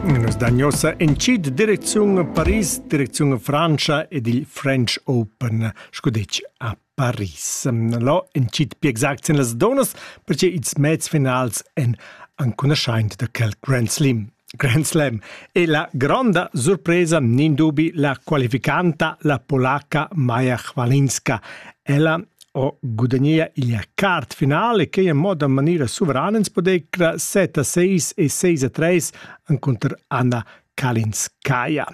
Üna sdagnosa entschet direcziun a Paris, direcziun a Frantscha ed il French Open, scu detg a Paris. Lo entschet pli exact sin las donas perche ils mezs finals èn ancunaschaint da quel Grand Slam. Grand Slam e la gronda surpresa nin dubi la qualificanta la polaca Maja Chwalinska. Ella ho gudagnea il quart final e quai in moda in maniera suverana ins podecra 7 a 6 e 6 a 3 encunter Anna Kalinskaya.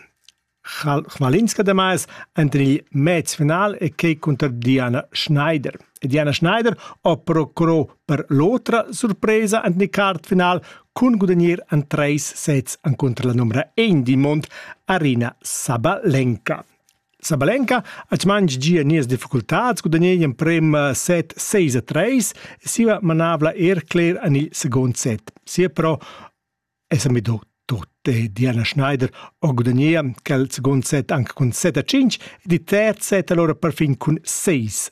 Chmalinska damais enter il mez final e quei cunter Diana Schneider. E Diana Schneider ho procurò per l'otra surpresa ant ni quart final cun gudagnir an treis sets encunter la numera 1 di Mont Arina Sabalenka. Sabalenka ha mangi gia nies difficultats gudagnei emprem eh, set 6 a 3 e siva manavla er cler en il second set. Sia però è samido tot e Diana Schneider ho gudagnea quel second set anche cun 7 a 5 e di terz set allora perfin cun 6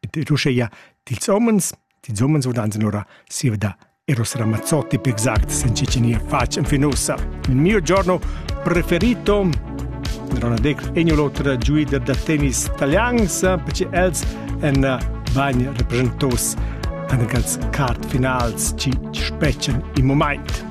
ed uscheia dils homens, dils homens vaudan ora siva da Eros Ramazzotti per exact sen Cecilia fac en finosa. Il mio giorno preferito Ronald Deck egno l'otra giuider da tennis italians perché els en eh, bagn representos an gals card finals ci specen in moment.